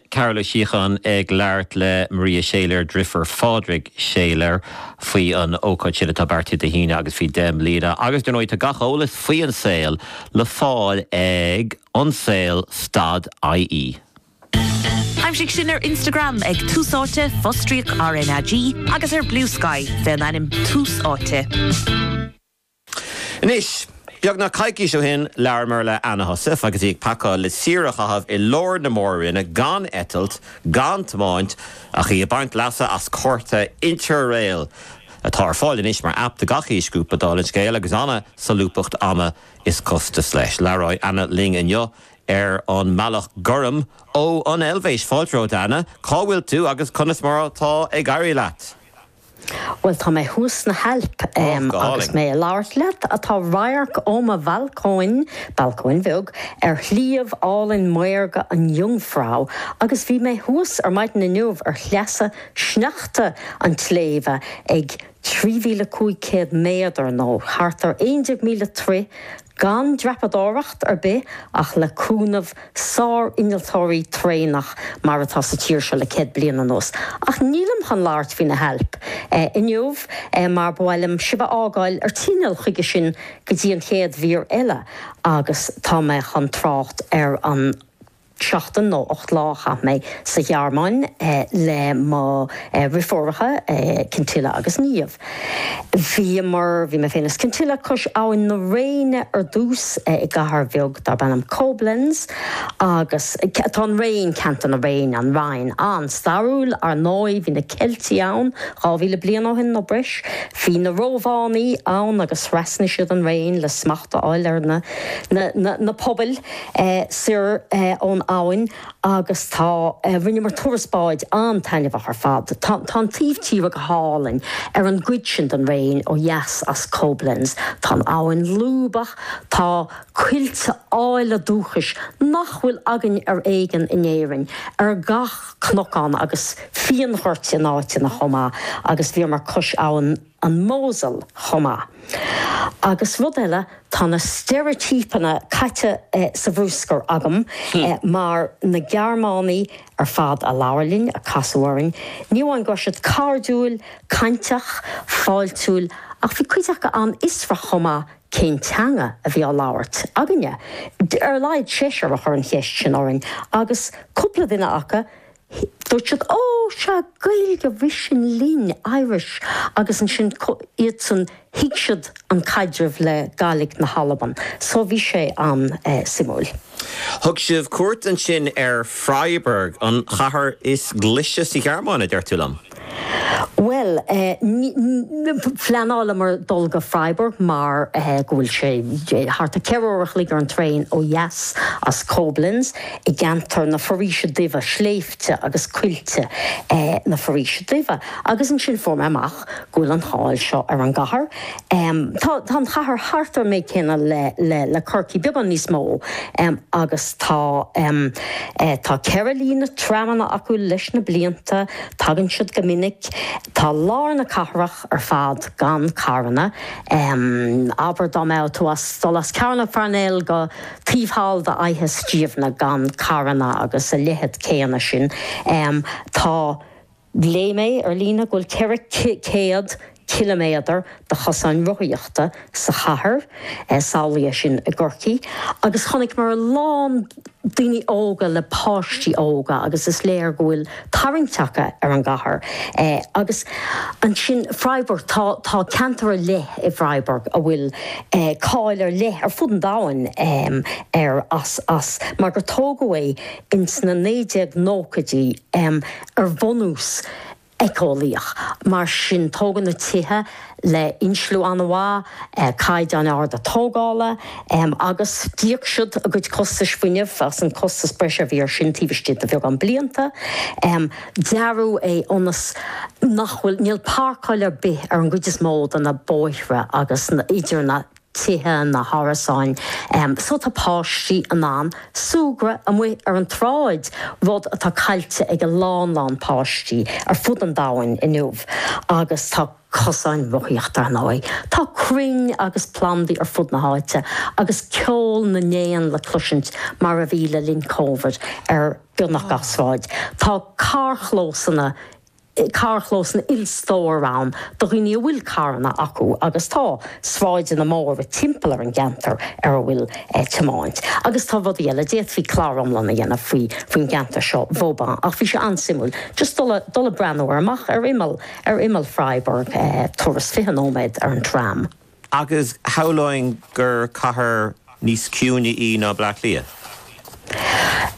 Carol Uí Shíocháin ag labhairt le Maria Schäler, driofúr Phádraig Schäler, faoi an ócáid sin atá beartaithe Dé hAoine agus faoi 10 mbliana agus dar ndóigh tá gach eolas faoi An Saol le fáil ag Ansaol stad IE. Aimsigh sinn ar Instagram ag Tús Áite, fostríoc RnaG, agus ar Bluesky, fén ainm Tús Áite. Anois, beagnach coicís ó shin, labhramar le Anna Heussaff agus í ag pacáil le saoire a chaitheamh i lár na Mór-Roinne gan eitilt, gan tiomáint, ach í ag baint leasa as cárta Interrail, atá ar fáil anois mar aip do gach aois grúpa, dála an scéil, agus an-solúbthacht ama is costais leis. Labhróidh Anna linn inniu ar an mbealach gúrm ó an Eilvéis. Fáilte romhat, a Anna. Cá bhfuil tú agus conas mar atá ag éirí leat? Bhuel, tá mé thuas sna hAilp agus mé ag labhairt leat. Tá radharc ó mo bhalcóin, balcóin bheag, ar shliabh álainn maorga an Jungfrau agus bhí mé thuas ar maidin inniu ar shleasa sneachta an tsléibhe ag 3,500 méadar nó thart ar 11,000 troigh gan dreapadóireacht ar bith ach le cúnamh sár-innealtóirí traenach mar atá sa tír seo le céad bliain anuas. Ach nílim chun labhairt faoi na hAilp inniu mar ba mhaith liom sibh a fhágáil ar tinneall chuige sin go dtí an chéad mhír eile agus tá mé chun trácht ar an seachtain nó ocht lá a chaith mé sa Ghearmáin le mo dhriféaracha, Kintilla agus Niamh. Bhíomar, bhí mé féin is Kintilla, cois abhainn na Réine ar dtús, i gcathair bheag darb ainm Koblenz, agus atá an Réin, ceantar na Réine, an Rhine, an-stairiúil, ar ndóigh. Bhí na Ceiltigh ann dhá mhíle bliain ó shin nó breis. Bhí na Rómhánaigh ann agus thrasnaigh siad an Réin le smacht a fháil ar na na na pobail. soir ón abhainn agus tá, rinneamar turas báid an-taitneamhach ar fad. Tá an taobh tíre go hálainn ar an gcuid sin den Réin ó dheas as Koblenz. Tá an abhainn lúbach, tá coillte áille dúchais nach bhfuil againn ar éigin in Éirinn ar gach cnocán agus fíonghoirt in áiteanna chomh maith agus bhíomar cois abhainn. an Mosel chomh maith. Agus rud eile, tá na steireitípeanna caite sa bhrúscar agam mar na Gearmánaigh ar fad a labhair linn, a casadh orainn, ní amháin go raibh siad cairdiúil, cainteach, fáiltiúil ach bhí cuid acu an-fhiosrach chomh maith cén teanga a bhí á labhairt againne. Ar a laghad seisear a chuir an cheist sin orainn agus cúpla duine acu Dúirt siad, Ó, sea, Gaeilge, rith sin linn, Irish, agus ansin iadsan, thuig siad an caidreamh le Gaidhlig na hAlban. So bhí sé an-suimiúil. Thug sibh cuairt ansin ar Freiburg, an chathair is glaise sa Ghearmáin, a deir tú liom? Bhuel, phleanálamar dul go Freiburg mar go bhfuil sé thart ar ceithre uair a chloig ar an traein ó dheas as Koblenz, i gceantar na Foraoise Duibhe, sléibhte agus coillte na Foraoise Duibhe. Agus ansin fuair mé amach go bhfuil an cháil seo ar an gcathair. Tá an chathair thart ar an méid céanna le Corcaigh, beagán níos mó, agus tá ceithre líne tramanna acu leis na blianta. Tagann siad go minic. Tá lár na cathrach ar fad gan carranna. Abair dá mbeadh tú ag dul as Cearnóg Pharnell go taobh thall d'Fhaiche Stiabhna gan carranna agus a leithead céanna sin. Tá, léigh mé ar líne go bhfuil 400, ciliméadar de chosáin rothaíochta sa chathair, samhlaigh é sin i gCorcaigh, agus chonaiceamar a lán daoine óga le páistí óga agus is léir go bhfuil tarraingt acu ar an gcathair. Agus ansin Freiburg, tá ceantar ar leith i bhFreiburg a bhfuil cáil ar leith ar fud an domhain air as, as mar gur tógadh é ins na 1990idí ar bhunús éiceolaíoch. Mar sin, tógadh na tithe le insliú an-mhaith, caighdeáin arda tógála agus d'íoc siad a gcuid costais fuinnimh as an costas breise a bhí ar sin taobh istigh de bheagán blianta. Dearadh é ionas nach bhfuil, níl parcáil ar bith ar an gcuid is mó de na bóithre agus idir na. tithe, na hárasáin so tá páistí in ann súgradh amuigh ar an tsráid, rud atá caillte ag a lán lán páistí ar fud an domhain inniu. Agus tá cosáin rothaíochta, ar ndóigh. Tá crainn agus plandaí ar fud na háite agus ceol na n-éan le cloisint mar a bhí le linn Covid ar beagnach gach sráid. Tá carrchlósanna. carrchlósanna ilstór ann do dhaoine a bhfuil carranna acu agus tá sráideanna móra timpeall ar an gceantar ar a bhfuil tiomáint agus tá rudaí eile. D'fhéadfaí clár iomlán a dhéanamh faoi faoin gceantar seo Vauban ach bhí sé an-suimiúil just dul dul ag breathnú air amach ar imeall ar imeall Freiburg turas 20 nóiméad ar an tram. Agus shamhlóinn gur cathair níos ciúine í ná Bleá Cliath?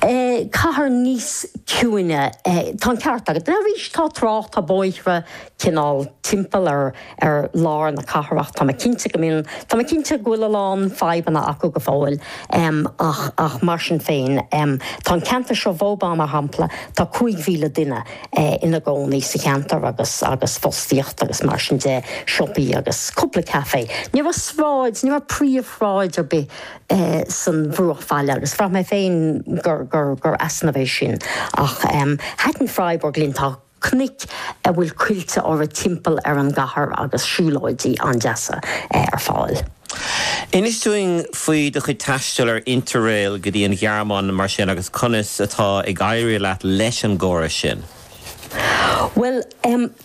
Cathair níos ciúine, tá an ceart agat. Arís, tá trá-, tá bóithre cineál timpeall ar lár na cathrach. Tá mé cinnte go mbíonn, tá mé cinnte go bhfuil a lán fadhbanna acu go fóill ach mar sin féin, tá an ceantar seo, Vauban mar shampla, tá 5,000 duine, ina gcónaí sa cheantar agus agus fostaíocht agus mar sin de, siopaí agus cúpla caife. Ní raibh sráid, ní raibh príomhshráid ar bith sa bhruachbhaile agus bhraith mé féin gur gur gur easnamh é sin ach thaitin Freiburg linn, tá cnoic a bhfuil coillte orthu timpeall ar an gcathair agus siúlóidí an-deasa ar fáil. Inis dúinn faoi do chuid taistil ar Interrail go dtí an Ghearmáin mar sin agus conas atá ag éirí leat leis an gcóras sin? Bhuel,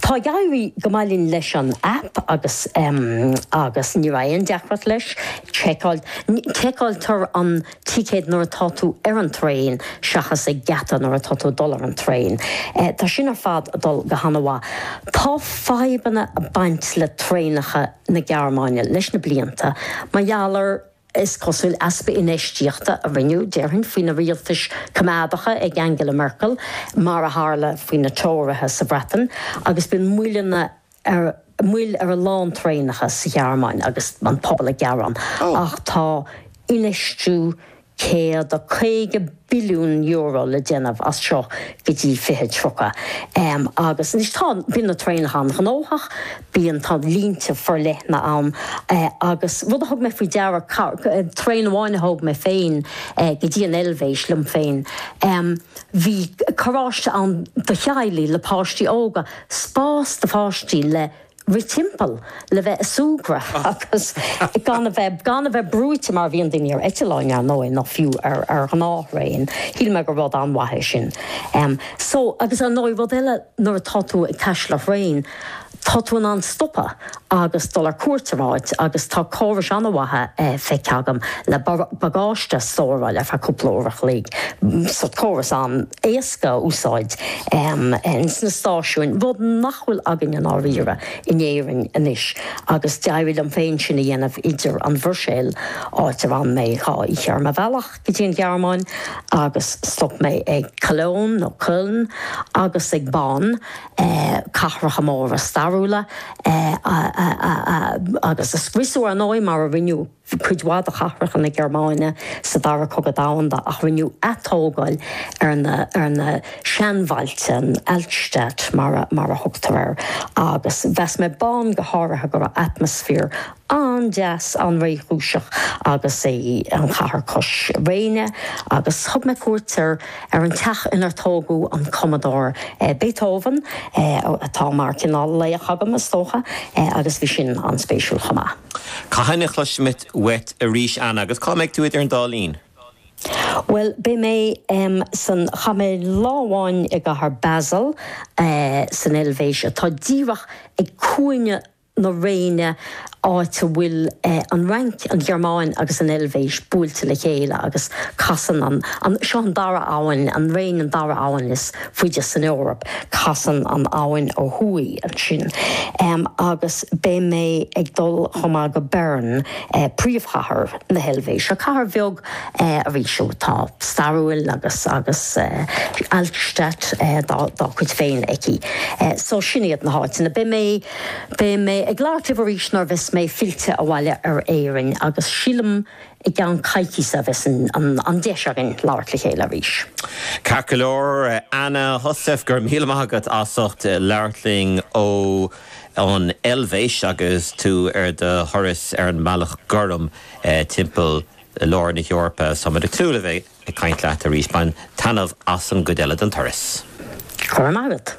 tá ag éirí go maith linn leis an aip agus agus ní raibh aon deacracht leis. Seiceáiltear an ticéad nuair atá tú ar an traein seachas ag geata nuair atá tú ag dul ar an traein. Tá sin ar fad ag dul go han-mhaith. Tá fadhbanna ag baint le traenacha na Gearmáine le na blianta mar gheall ar, is cosúil, easpa infheistíochta a rinneadh, déarfainn, faoi na rialtais coimeádacha ag Angela Merkel, mar a tharla faoi na Tóraithe sa Bhreatain, agus bíonn moilleanna ar moill ar a lán traenacha sa Ghearmáin agus an pobal ag gearán ach tá infheistiú €150 billiún le déanamh as seo go dtí 2030 agus anois tá bíonn na traenacha an-ghnóthach, bíonn tá línte forleathana ann agus rud a thug mé faoi deara traein amháin a thóg mé féin go dtí an Eilvéis liom féin bhí carráiste ann do theaghlaigh le páistí óga. spás do pháistí le rith timpeall, le bheith a súgradh agus gan a bheith gan a bheith brúite mar bhíonn daoine ar eitealláin ar ndóigh nó fiú ar ar ghnáth-thraein. Shíl mé gur rud an-mhaith é sin. Em so agus ar ndóigh rud eile nuair atá tú ag taisteal ar thraein tá tú in ann stopadh. agus dul ar cuairt ar áit agus tá córais an-mhaithe feicthe agam le bagáiste a stóráil ar feadh cúpla uair a chloig, sórt córas an-éasca a úsáid sna stáisiúin, rud nach bhfuil againn i ndáiríre in Éirinn anois agus d'éirigh liom féin sin a dhéanamh idir an Bhruiséil, áit ar fhan mé dhá oíche ar mo bhealach. go dtí an Ghearmáin agus stop mé ag Cologne nó Köln agus ag Bonn, cathracha móra stairiúla, agus a scriosadh, ar ndóigh, mar a rinneadh cuid mhaith de chathracha na Gearmáine sa Dara Cogadh Domhanda, ach rinneadh atógáil ar na seanbhailte, an Altstadt mar a thugtar air, agus mheas mé Bonn go háirithe go raibh atmaisféar an-deas, an-réchúiseach agus é an chathair cois Réine agus thug mé cuairt ar ar an teach inar tógadh an cumadóir Beethoven atá mar cineál laoch agam is dócha agus bhí sin an-spéisiúil chomh maith. Cathain a chloisfimid uait arís Anna agus cá mbeidh tú idir an dá linn? Bhuel beidh mé san chaith mé lá amháin i gcathair Basel san Eilvéis atá díreach ag cúinne na Réine, áit a bhfuil an Fhrainc, an Ghearmáin agus an Eilvéis buailte le chéile agus casann an, an, seo an dara abhainn, an Réin an dara abhainn is faide san Eoraip, casann an abhainn ó thuaidh ansin. Agus beidh mé ag dul chomh maith go Bern, príomhchathair na hEilvéise, cathair bheag arís atá stairiúil agus agus Altstadt dá cuid féin aici. So sin iad na háiteanna. Beidh mé. Beidh mé ag labhairt libh arís nuair a bheas mé fillte abhaile go hÉirinn agus sílim i gceann coicíse a bheas an deis againn labhairt le chéile arís. Ceart go leor, Anna Heussaff, go raibh míle maith agat as ucht labhairt linn ó an Eilvéis agus tú ar do thuras ar an mBealach Gorm timpeall lár na hEorpa. Tá muid ag tnúth le bheith ag caint leat arís. Bain taitneamh as an gcuid eile den turas. Go raibh maith agat.